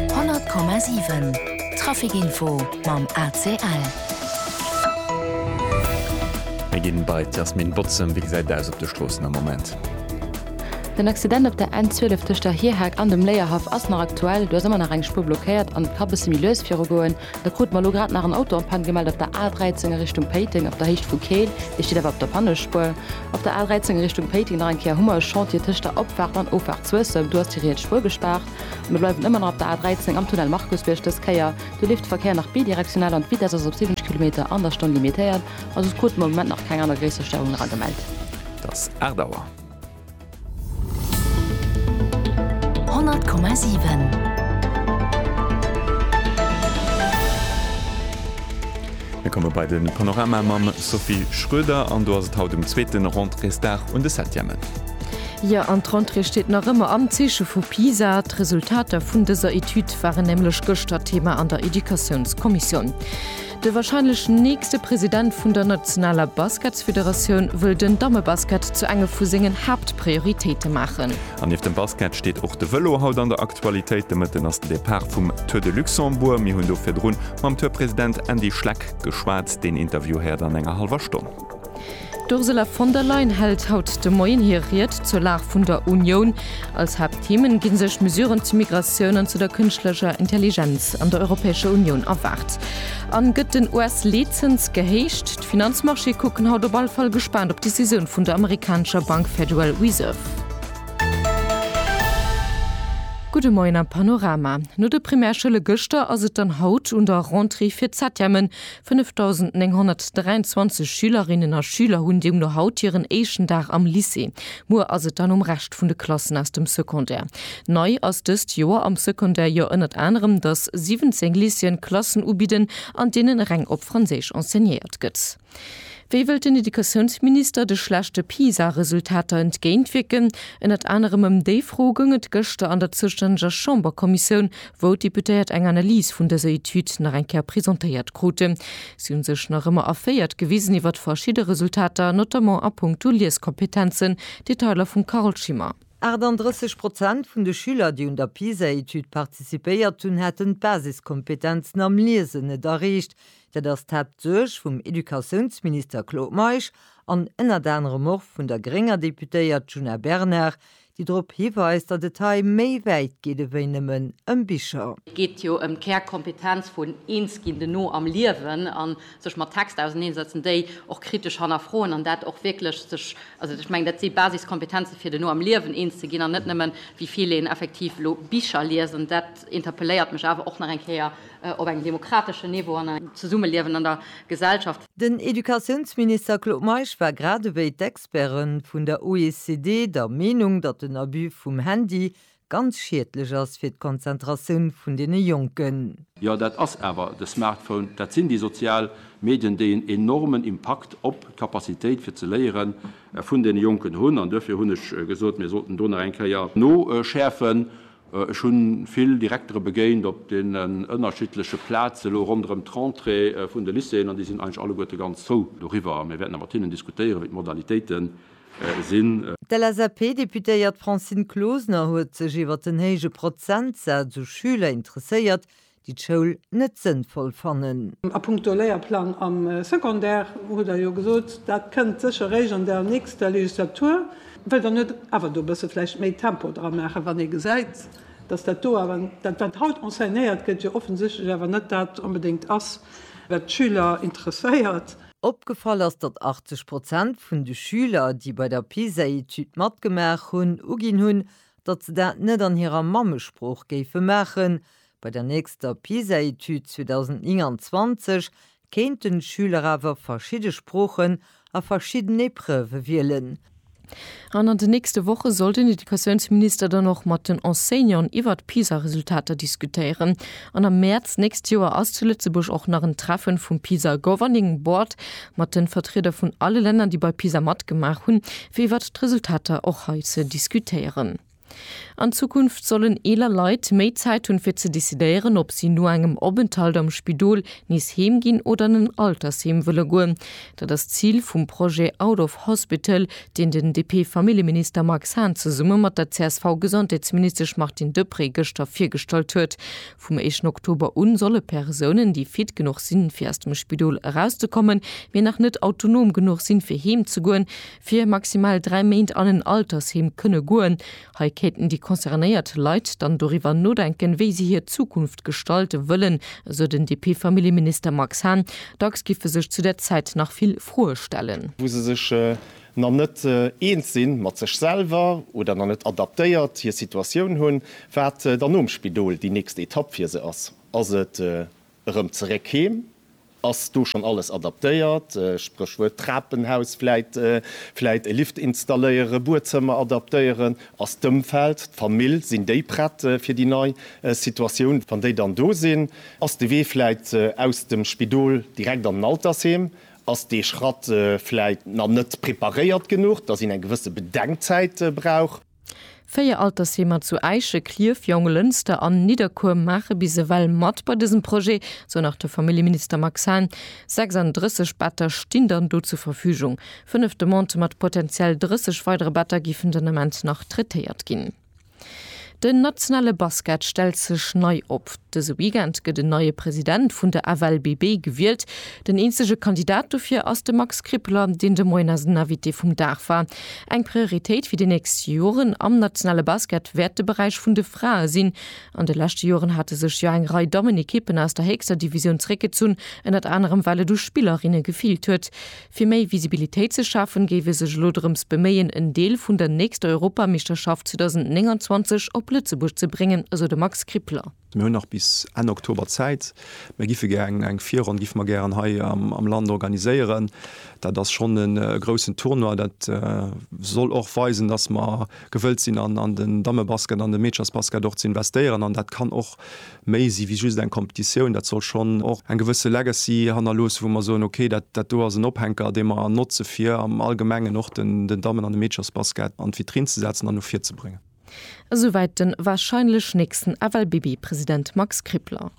100,7 Trafic Info mam ACL. Mir ginn bei d'Yasmine Bozem. Wéi gesäit et aus op de Stroossen am Moment? Den Accident op der N 12 tëscht der Hierhak an dem Léierhaff ass nach aktuell. Do ass ëmmer nach eng Spuer blockéiert an et ka bësse méi lues virugoen. Da krute mer elo grad nach en Auto en panne gemellt op der A13 a Richtung Péiteng op der Héicht vu Keel. Dee steet awer op der Pannespuer. Op der A13 a Richtung Péiteng nach eng Kéier hu mer e Chantier tëscht der Opfaart an Offart Suessem. Do ass déi riets Spuer gespaart. A mir bleiwen ëmmer nach op der A13 am Tunnel Markusbierg dës Kéier. Do leeft de Verkéier nach bidirektional an d'Vitess ass op 70 Kilometer an der Stonn limitéiert. A soss krute mer am Moment nach keng aner gréisser Störungen eragemellt. Dass 8 Auer. Mir komme bei de Panorama mam Sophie Schröder an do ass et haut um zweeten Rentréesdag un de Septièmen. Jo, an d'Rentrée steet nach ëmmer am Zeeche vu PISA. D'Resultater vun dëser Etüd waren nämlech gëschter Thema an der Educatiounskommissioun. De warscheinlech nächste President vun der nationaler Basketsfederatioun wëll den Dammebasket zu enge vu sengen Haaptprioritéite maachen. An nieft dem Basket steet och de Vëlo haut an der Aktualitéit. De Mëtten ass den Depart vum Tour de Luxembourg. Mir hunn do virdrun mam Tour-President Andy Schleck geschwat. Deen Interview héiert an enger hallwer Stonn. D'Ursula von der Leyen hält haut de Moien hir Ried zur Lag vun der Unioun. Als Haaptthemen gi sech Mesuren zu Migratioun an zu der kënschtlecher Intelligenz an der Europäescher Unioun erwaart. A gëtt den US-Leetzëns gehéicht? D'Finanzmarchéë kucken haut op alle Fall gespaant op d'Decisioun vun der amerikanescher Bank Federal Reserve. Gudde Moien am Panorama. No de Primärschoulle gëschter ass et dann haut un der Rentrée fir d'Septièmen, 5.923 Schülerinnen a Schüler hunn deemno haut hiren éischten Dag am Lycée. Muer ass et dann um Rescht vun de Klassen aus dem Secondaire. Nei ass dëst Joer am Secondaire jo ënnert anerem, dass 17 Lycéeën Klassen ubidden, an deenen reng op Franséisch enseignéiert gëtt. Wéi wëllt den Educatiounsminister de schlechte PISA-Resultater entgéintwierken? Ënnert anerem ëm déi Fro goung et gëschter an der zoustänneger Chamberkommissioun wou d'Deputéiert eng Analys vun dëser Etüd nach eng Kéier presentéiert kruten. Si hu sech nach ëmmer erféiert gewisen iwwert verschidde Resultater, notamment a puncto Lieskompetenzen, Detailer vum Carole Schimmer. 38 Prozent vun de Schüler, déi un der PISA-Etüd participéiert hunn, hätten d'Basiskompetenzen am Liesen net erreecht. Dat ass d'Haaptsuerg vum Educatiounsminister Claude Meisch an ënnert anerem och vun der grénger Deputéiert Djuna Bernard, déi drop hiweist, datt et hei méi wäit geet ewéi nëmmen ëm Bicher. Et geet jo ëm d'Kärkompetenz vun eens ginn, de No am Liewen a sech mat Texter auseneensetzen, déi och kritesch hannerfroen an dat och wierklech sech, also ech mengen, dat si Basiskompetenze fir de No am Liewen eens ze ginn an net nëmmen, wéi vill een effektiv elo Bicher liest. An dat interpelléiert mech awer och nach eng Kéier op engem demokrateschen Niveau an engem Zesummeliewen an der Gesellschaft. Den Educatiounsminister Claude Meisch war, grad ewéi d'Ex. Experten vun der OECD der Meenung, datt den Abus vum Handy ganz schiedlech ass fir d'Konzentratioun vun deene Jonken. Jo, dat ass awer de Smartphone, dat sinn déi sozial Medien, déi en enormen Impakt op d'Capacitéit fir ze léiere vun deene Jonken hunn. An duerfir hunn ech gesot, mir sollten do nach eng Kéier noschäerfen. Ech hunn vill Direktere begéint op deenen ënnerschiddleche Plaze lo ronderëm d'Rentrée vun de Lycéeën, an déi sinn eigentlech alleguerte ganz frou doriwwer. Mir wäerten da mat hinnen diskutéieren, wéi d'Modalitéite sinn. D'LSAP-Deputéiert Francine Closener huet sech iwwer den héije Prozentsaz u Schüler interesséiert, déi d'Schoul net sënnvoll fannen. A punkto Léierplang am Secondaire hutt Der jo gesot, dat kënnt sécher réischt an der nächster Legislatur. Wëllt Der net awer do e bësse vläicht méi Tempo dra maachen, wann ee gesäit, datt dat do awer, dat wat haut enseignéiert gëtt, jo offensichtlech awer net dat onbedéngt ass, wat d'Schüler interesséiert? Opgefall ass, datt 80 Prozent vun de Schüler, déi bei der PISA-Etüd matgemaach hunn, uginn hunn, datt se dat net an hirer Mammesprooch géife maachen, Bei der nächster PISA-Etüd 2029 kéinten d'Schüler awer verschidde Sproochen a verschidden Epreuve wielen. An an den nächste Woche soll den Educatiounsminister dann och mat den Enseignanten iwwert d'PISA-Resultater diskutéieren. An am Mäerz nächst Joer ass zu Lëtzebuerg och nach en Treffen vum PISA Governing Board mat den Vertrieder vun alle Länner, déi bei PISA matgemaach hunn, fir iwwert d'Resultater och hei ze diskutéieren. An Zukunft sollen eeler Leit méi Zäit hunn, fir ze decidéieren, ob si no engem Openthalt am Spidol nees heem ginn oder an en Altersheem wëlle goen. Dat ass d'Zil vum Projet Out of Hospital, deen den DP-Familljeminister Max Hahn zesumme mat der CSV-Gesondheetsministesch Martine Deprez gëschter virgestallt huet. Vum éischten Oktober un solle Persounen, déi fit genuch sinn, fir aus dem Spidol erauszekommen, mee nach net autonom genuch sinn, fir heem ze goen, fir maximal dräi Méint an en Altersheem kënne goen. Hei kéinten déi concernéiert Leit dann doriwwer nodenken, wéi si hir Zukunft gestalte wëllen, esou den DP-Familljeminister Max Hahn. Dacks giffe sech zu där Zäit nach vill Froe stellen. wou se sech nach net eens si mat sech selwer oder nach net adaptéiert hir Situatioun hunn, wat dann nom Spidol déi nächst Etapp fir se ass. Ass et erëm zeréck heem Ass do schonn alles adaptéiert? Spréchwuert Trapenhaus, vläit vläit e Lift installéieren, Buedzëmmer adaptéieren? Ass d'Ëmfeld, d'Famill, sinn déi prett fir déi nei Situatioun, wann déi dann do sinn? Ass de Wee vläit aus dem Spidol direkt an den Altersheem? Ass dee Schratt vläit nach net preparéiert genuch, dass een eng gewësse Bedenkzäit brauch? Véier Altersheemer zu Äische, Klierf, Jonglënster an Nidderkuer maache bis ewell mat bei dësem Projet, sou nach de Familljeminister Max Hahn. 36 Better stinn dann do zur Verfügung. Fënnef Demandë mat potenziell 30 weidere Better géifen den Ament nach traitéiert ginn. Den nationale Basket stellt sech nei op. Dëse Weekend gëtt en neie President vun der FLBB gewielt. Den eenzege Kandidat dofir ass de Max Krippler, deen de Moien eisen Invité vum Dag war. Eng Prioritéit fir déi nächst Joren am nationale Basket wäert de Beräich vun de Frae sinn. An de leschte Joren hate sech jo eng Rei Dammenekippen aus der héchster Divisioun zréckgezunn, ënnert anerem well et u Spillerinne gefeelt huet. Fir méi Visibilitéit ze schafen, géif ee sech elo drëms beméien, en Deel vun der nächster Europameeschterschaft 2029 op Lëtzebuerg ze bréngen, esou de Max Krippler. Mir hunn nach bis Enn Oktober Zäit. Mir giffe gären, eng Virronn giffe mer gären hei am Land organiséieren. Dat ass schonn e groussen Tournoi. Dat soll och weisen, dass mer gewëllt sinn an den Dammebasket, an de Meederchersbasket och ze investéieren. An dat kann och méi si wéi just eng Competitioun. Dat soll schonn och eng gewësse Legacy hannerloossen, wou mer soen, okay, dat dat do ass en Ophänker, dee mer notze fir am Allgemengen och den Dammen an de Meederchersbasket an d'Vitrinn ze setzen an no vir ze bréngen. Esouwäit den wahrscheinlech nächsten FLBB-President Max Krippler.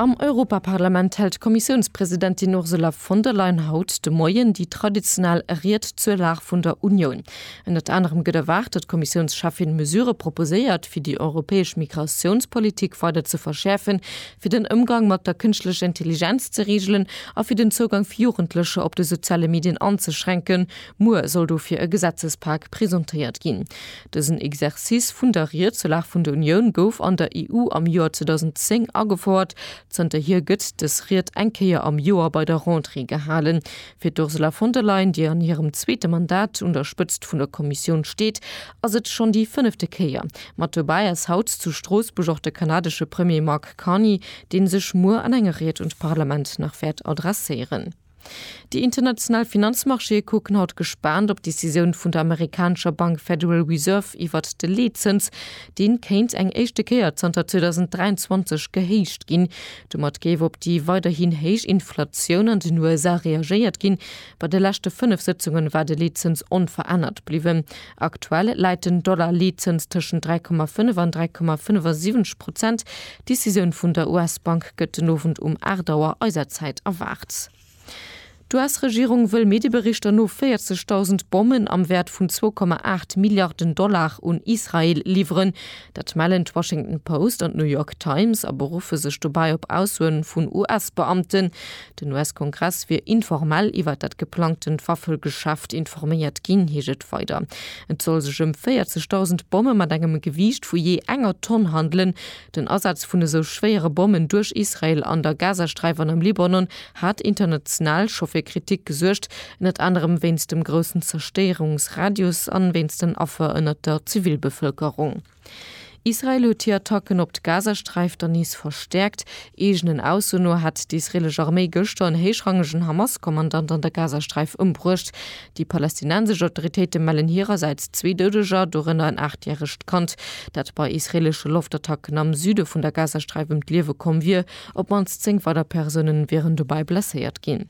Am Europaparlament hält d'Kommissiounspresidentin Ursula von der Leyen haut de Moien déi traditionell Ried zur Lag vun der Unioun. Ënnert anerem gëtt erwaart, datt d'Kommissiounscheffin Mesurë proposéiert, fir déi europäesch Migratiounspolitik weider ze verschäerfen, fir den Ëmgang mat der kënschtlecher Intelligenz ze reegelen a fir den Zougang fir Jugendlecher op de soziale Medien anzeschränken, Muer soll dofir e Gesetzespak presentéiert ginn. Dësen Exercice vun der Rietselag vun der Unioun gouf an der EU am Joer 2010 agefouert. Zënterhier gëtt dës Ried eng Kéier am Joer bei der Rentrée gehalen. Fir d'Ursula von der Leyen, déi an hirem zweete Mandat un der Spëtzt vun der Kommissioun steet, ass et schonn déi fënnefte Kéier. Mat dobäi ass haut zu Stroossbuerg och de kanadesche Premier Mark Carney, dee sech muer an enger Ried un d'Parlament nach wäert adresséieren. Déi international Finanzmarchéë kucken haut gespaant op d'Decisioun vun der amerikanescher Bank Federal Reserve iwwert de Leetzëns. Dee kéint eng éischte Kéier zanter 2023 gehéicht ginn. Domat géif op déi weiderhin héich Inflatioun an den USA reagéiert ginn. Bei de leschte fënnef Sëtzunge war de Leetzëns onverännert bliwwen. Aktuell läit den Dollar-Leetzëns tëschent 3,5 an 3,75 Prozent. D'Decisioun vun der US-Bank gëtt den Owend um 8 Auer eiser Zäit erwaart. D'US-Regierung wëll Medieberichter no 40.000 Bommen am Wäert vun 2,8 Milliarden Dollar un Israel liwweren. Dat mellen d'Washington Post an d'New York Times a beruffe sech dobäi op Aussoen vun US-Beamten. Den US-Kongress wier informell iwwert dat geplangtent Waffelgeschäft informéiert ginn, heescht et weider. Et soll sech ëm 40.000 Bomme mat engem Gewiicht vu jee enger Tonn handelen. Den Asaz vun esou schwéiere Bommen duerch Israel an der Gazasträif an am Libanon hat international scho fir Kritik gesuergt, ënnert anerem wéinst dem groussen Zerstéierungsradius an wéinst den Affer ënnert der Zivilbevëlkerung. Israel huet hir Attacken op d'Gazasträif dann nees verstäerkt. Eegenen Ausso no hat d'israelesch Arméi gëschter en héichrangegen Hamas-Kommandant an der Gazasträif ëmbruecht. Déi palästinensesch Autoritéite mellen hirersäits zwee Doudeger, dorënner en aacht järegt Kand, dat bei israeleschen Loftattacken am Süde vun der Gazasträif ëm d'Liewe komm wier. Op d'mannst zéng weider Persoune wieren dobäi blesséiert ginn.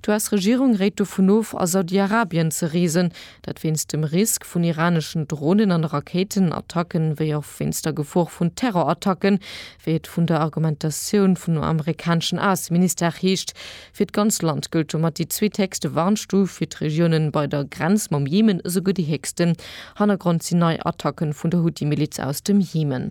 D'US-Regierung réit dovun of, a Saudi-Arabien ze reesen, dat wéinst dem Risk vun iraneschen Dronen an Rakéitenattacken, wéi och wéinst der Gefor vun Terrorattacken, wéi et vun der Argumentatioun vun amerikaneschen Ausseministère heescht. Fir d'ganz Land gëllt domat déi zweethéchste Warnstuf, fir d'Regiounen bei der Grenz mam Jemen esouguer déi héchsten. Hannergrond sinn nei Attacke vun der Huthi-Miliz aus dem Jemen.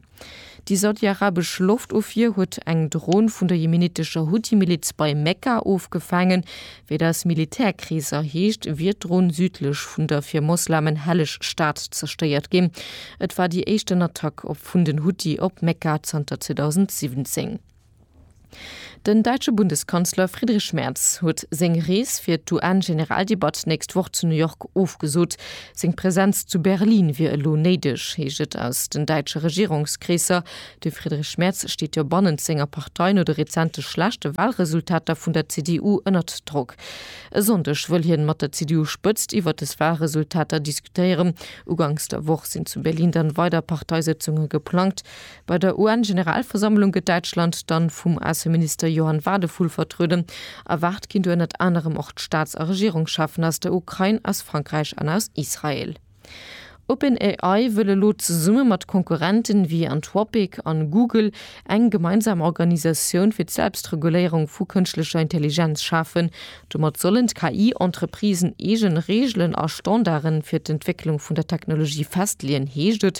Déi saudi-arabesch Loftofwier huet eng Dron vun der jemenittescher Huthi-Miliz bei Mekka ofgefaangen. Wéi et aus Militärkreeser heescht, wier d'Dron südlech vun der fir Moslamen helleg Stad zerstéiert ginn. Et war déi éischten Attack op vun den Huthi op Mekka zanter 2017. Den däitsche Bundeskanzler Friedrich Merz huet seng Rees fir d'UN-Generaldebatt d'nächst Woch zu New York ofgesot. Seng Presenz zu Berlin wier elo néideg, heescht et aus den däitsche Regierungskreesser. De Friedrich Merz steet jo bannent senger Partei no de rezente schlechte Walresultater vun der CDU ënnert Drock. E Sonndeg wëll hien mat der CDU-Spëtzt iwwert des Walresultater diskutéieren. Ugangs der Woch sinn zu Berlin dann weider Parteisëtzunge geplangt. Bei der UN-Generalversammlung gëtt Däitschland dann vum Ausseminister Johann Wadephul vertrueden. Erwaart ginn do ënnert anerem och d'Staats a Regierungscheffen aus der Ukrain, aus Frankräich an aus Israel. OpenAI wëll elo zesumme mat Konkurrenten ewéi Anthropic an Google eng gemeinsam Organisatioun fir d'Selbstreguléierung vu kënschtlecher Intelligenz schafen. Domat sollen d'KI-Entreprisen eegen Reegelen a Standarden fir d'Entwécklung vun der Technologie festleeën, heescht et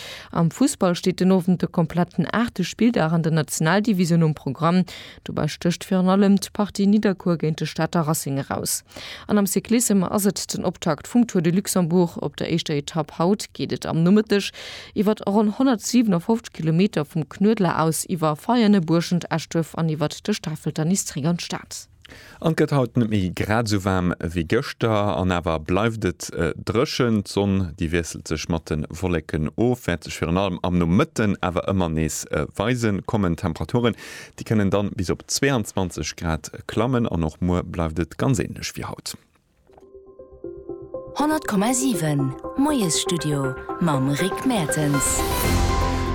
Am Fussball steet den Owend de kompletten aachte Spilldag an der Nationaldivisioun um Programm. Dobäi stécht virun allem d'Partie Nidderkuer géint de Stater Racing eraus. An am Cyclissem ass et den Optakt vum Tour de Luxembourg. Op der éischter Etapp haut geet et am Nomëtteg iwwer ronn 157 Kilometer vum Knuedler aus iwwer Veianen, Buerschent, Eschduerf an iwwer de Stafelter nees zeréck an d'Stad. An et gëtt haut net méi grad esou waarm wéi gëschter, an awer bleift et dréchen. D'Sonn, déi wiesselt sech mat de Wolleken of, wäert sech virun allem am Nomëtten awer ëmmer nees weisen. Kommen d'Temperaturen, déi kënnen dann bis op 22 Grad klammen, an och muer bleift et ganz änlech wéi haut. 100,7 Moiesstudio mam Rick Mertens.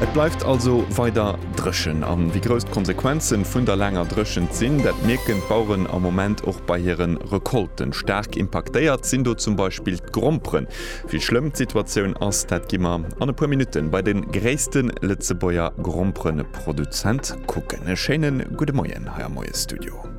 Et bleift also weider dréchen an wéi grouss d'Konsequenzen vun der laanger Dréchent sinn, dat mierken d'Baueren am Moment och bei hiren Recolten. Staark impaktéiert sinn do zum Beispill d'Gromperen. Wéi schlëmm d'Situatioun ass, dat gi mer an e puer Minutten bei den gréissten Lëtzebuerger Gromperenproduzent kucken. E schéinen gudde Moien hei am Moiesstudio.